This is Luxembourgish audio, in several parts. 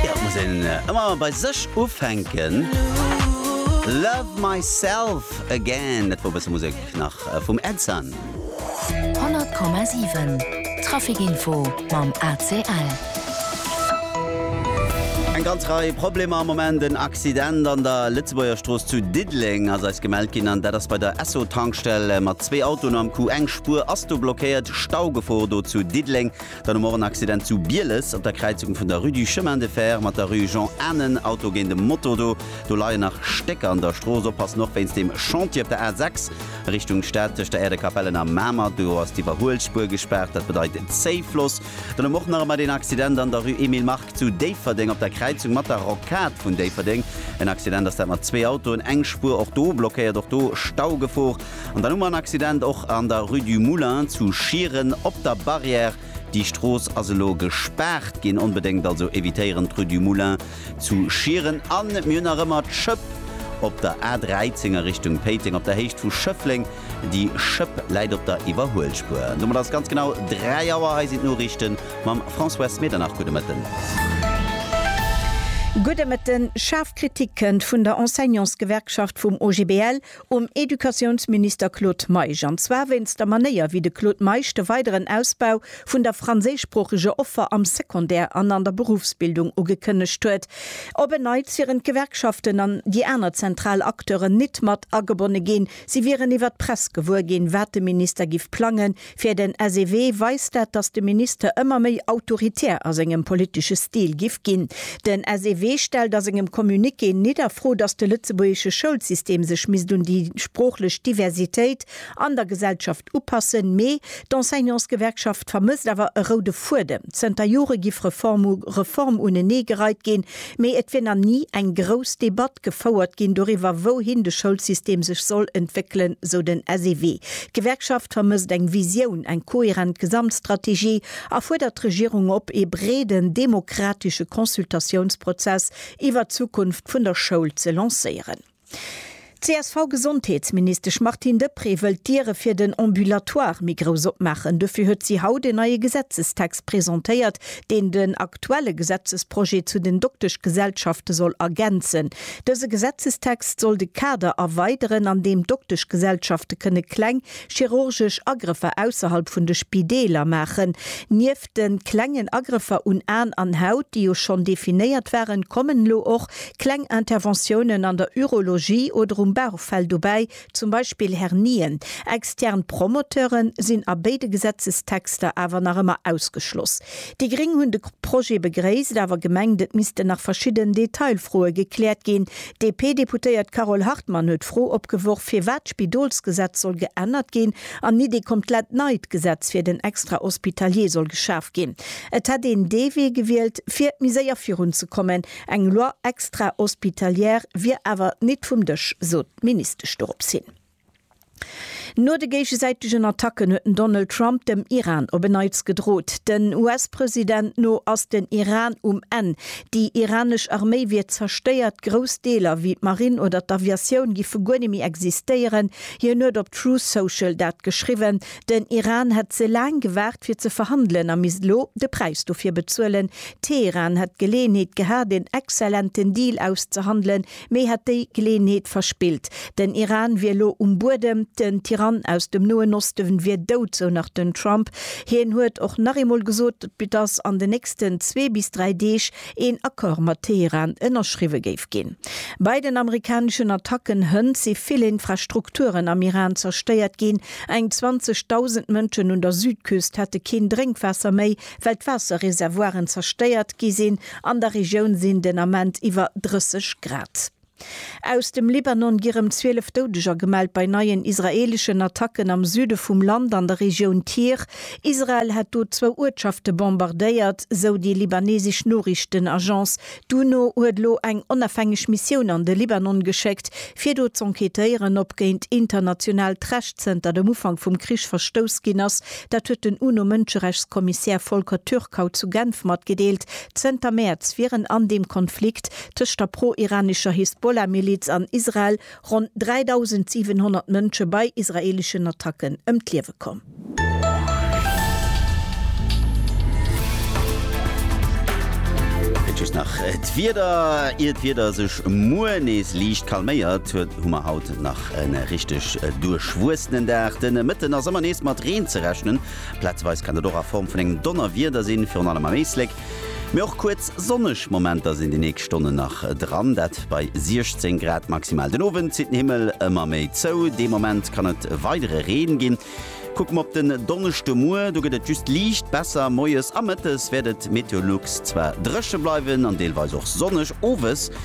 Jo, et muss een ëmmer bei sech ufänken. Love myself again, dat wor e bësse Musek nach vum Edson. 100,7 Trafic Info mam ACL. Eng ganz Rei Problemer am Moment. En Accident an der Lëtzebuergerstrooss zu Diddeleng ass eis gemellt ginn an dat ass bei der Esso-Tankstell mat zwee Autoen am Coup. Eng Spuer ass do blockéiert. Staugefor do zu Diddeleng. Dann hu mer och en Accident zu Bieles op der Kräizung vun der Rue du Chemin de Fer mat der Rue Jean Anen. Auto géint e Moto. Do do leien nach Stécker an der Strooss. Oppassen och wéinst deem Chantier op der A 6 Richtung Stad tëscht der Äerdekapell an der Mamer. Do ass d'Iwwerhuelspuer gespaart. Dat bedeit Zéifloss. Dann hu mer och nach ëmmer deen Accident an der Rue Emile Mark zu Déifferdeng op der Kräizung mat der Rocade vun Déifferdeng. En Accident ass dat mat zwee Autoen, eng Spuer och do blockéiert. Och do Staugefor. An dann hu mer en Accident och an der Rue du Moulin zu Schieren op der Barrière. Déi Strooss ass elo gespaart ginn. Onbedéngt also evitéieren d'Rue du Moulin zu Schieren. An mir hunn nach ëmmer d'Schëpp op der A13 a Richtung Péiteng op der Héicht vu Schëffleng. Déi Schëpp läit op der Iwwerhuelspuer. An domat ass et ganz genau 3 Auer. Hei sinn d'Noriichte mam Françoise Medernach. Gudde Mëtten. Gudde Mëtten. Schaarf Kritik kënnt vun der Enseignantsgewerkschaft vum OGBL. um Educatiounsminister Claude Meisch, an zwar wéinst der Manéier, wéi de Claude Meisch de weideren Ausbau vun der franséischsproocheger Offer am Secondaire an an der Berufsbildung ugekënnegt huet. Op en Neits wieren d'Gewerkschaften an déi aner zentral Acteuren nit mat agebonne ginn. Si wieren iwwer d'Press gewuer ginn, wat de Minister giff plangen, Fir den SEW weist dat, datt de Minister ëmmer méi autoritär a sengem politesche Stil giff ginn. Den SEW stellt a sengem Communiqué nit a Fro, datt de lëtzebuergesche Schoulsystem sech misst un déi sproochlech Diversitéit an der Gesellschaft upassen, mee d'Enseignantsgewerkschaft vermësst awer e roude Fuedem. Zënter Jore giff Reform u Reform unenee gereit ginn, Mee et wier nach ni eng grouss Debatt gefouert ginn doriwwer, wouhin de Schoulsystem sech soll entwéckelen, sou den SEW. D'Gewerkschaft vermësst eng Visioun, eng kohärent Gesamtstrategie a fuerdert d'Regierung op, ee breeden demokratesche Consultatiounsprozess iwwer d'Zukunft vun der Schoul ze lancéieren. D'CSV-Gesondheetsministesch Martine Deprez wëll d'Diere fir den Ambulatoire méi grouss opmaachen. Dofir huet si haut en neie Gesetzestext presentéiert, deen den aktuelle Gesetzesprojet zu den Dokteschgesellschafte soll ergänzen. Dëse Gesetzestext soll de Kader erweideren, an deem Dokteschgesellschafte kënne kleng chirurgesch Agrëffer ausserhalb vun de Spideeler maachen. Nieft den klengen Agrëffer un Aan an Haut, déi jo schonn definéiert waren, kommen elo och kleng Interventiounen an der Urologie oder um Bauchfell dobäi, zum Beispill Hernien. Extern Promoteuren sinn a béide Gesetzestexter awer nach ëmmer ausgeschloss. Déi Gréng hunn de Projet begréisst, awer gemengt, et missten nach verschidden Detailfroe gekläert ginn. D'DP-Deputéiert Carole Hartmann huet d'Fro opgeworf, firwat d'Spidolsgesetz soll geännert ginn, An Iddi kommt lett neit Gesetz fir den Extra-Hospitalier soll geschaf ginn. Et hätt een dee Wee gewielt fir méi séier virun ze kommen. Eng Loi extra-hospitalière wier awer nit vum Dësch, sot d'Ministesch dorops hin. No de géigesäitegen Attacken huet den Donald Trump dem Iran op en Neits gedrot. Den US-President no ass den Iran um Enn. Déi iranesch Arméi wier zerstéiert, grouss Deeler wéi d'Marinn oder d'Aviatioun giffe guer net méi existéieren. Hien huet op Truth Social dat geschriwwen, den Iran hätt ze laang gewaart fir ze verhandelen a misst elo de Präis dofir bezuelen. Teheran hätt d'Geleeënheet gehat een exzellenten Deal auszehandelen, mee hätt déi Geleeënheet verspillt. Den Iran wier elo um Buedem, den Tyrann aus dem Noen Osten wier dout, sou nach den Trump. Hien huet och nach eemol gesot, datt an den nächsten zwee bis dräi Deeg een Accord mat Teheran ënnerschriwwe géif ginn. Bei den amerikaneschen Attacken hënt si vill Infrastrukturen am Iran zerstéiert ginn. Eng 20.000 Mënschen un der Südküst hätte keen Drénkwaasser méi, well d'Waasserreservoiren zerstéiert gi sinn. An der Regioun sinn den Ament iwwer 30 Grad. Aus dem Libanon gi rëm 12 Doudeger gemellt bei neien israeeleschen Attacken am Süde vum Land an der Regioun Tyr. Israel hätt do zwou Uertschafte bombardéiert, sou déi libanesesch Noriichtenagence. D'UNO huet elo eng onafhängeg Missioun an de Libanon geschéckt, fir do z'enquêtéieren, ob géint internationaalt Recht zënter dem Ufank vum Krich verstouss ginn ass. Dat huet den UNO-Mënscherechtskommissär Volker Türk haut zu Genf matgedeelt. Zënter Mäerz wieren an deem Konflikt tëscht der pro-iranescher Hisbollah-Miliz an Israel ronn 3.700 Mënsche bei israeeleschen Attacken ëm d'Liewe komm. Et just nach d'Wieder. Ier d'Wieder sech muer nees liicht calméiert, hu mer haut nach e richteg duerchwuessenen Dag. De Mëtten ass ëmmer nees mat Reen ze rechnen, plazeweis kann dat och a Form vun engem Donnerwieder sinn, virun allem am Éislek. Mee och kuerz sonneg Momenter sinn déi nächst Stonnen nach dran, dat bei 16 Grad maximal. Den Owend zitt den Himmel ëmmer méi zou, dee Moment kann et weidere Reen ginn. Kucke mer op den Donneschdemuer, do gëtt et just liicht besser, moies a mëttes wäert et meteolux zwar dréche bleiwen an deelweis och sonneg, owes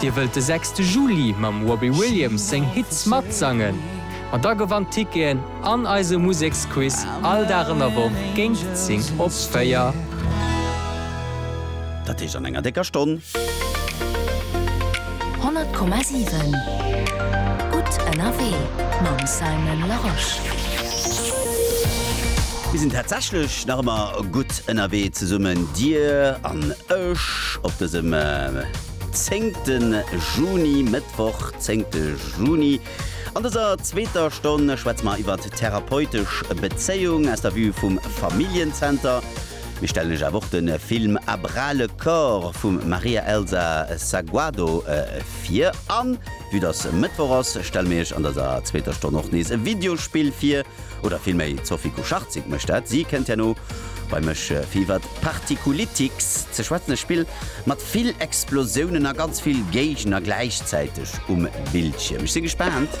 Dir wëllt de sechste Juli mam Robbie Williams seng Hits matsangen? Ma da gewannt Ticketen an eise Museksquiz all Dag an der Woch géint 10 op 4. Dat heescht an enger décker Stonn. 100,7 Gutt ënnerwee mam Simon Larosche. Mir sinn tatsächlech nach ëmmer gutt ënnerwee zesummen, Dir an ech. Match op dësem 10 Juni, Mëttwoch 10 Juni. An dëser zweeter Stonn schwätze mer iwwer therapeutesch Bezéiung aus der Vue vum Familljenzenter. Mir stellen iech awer och de Film À bras le corps vum Maria Elsa Saguado vir. An vue dass Mëttwoch ass, stelle mir iech an dëser zweeter Stonn och nees e Videospill vir. oder villméi d'Sophie Kucharczyk mécht dat, si kënnt herno bei mech fir iwwert Particulitics ze schwätzen, e Spill mat vill Explosiounen a ganz vill Géigner gläichzäiteg um Bildschierm. Ech si gespaant.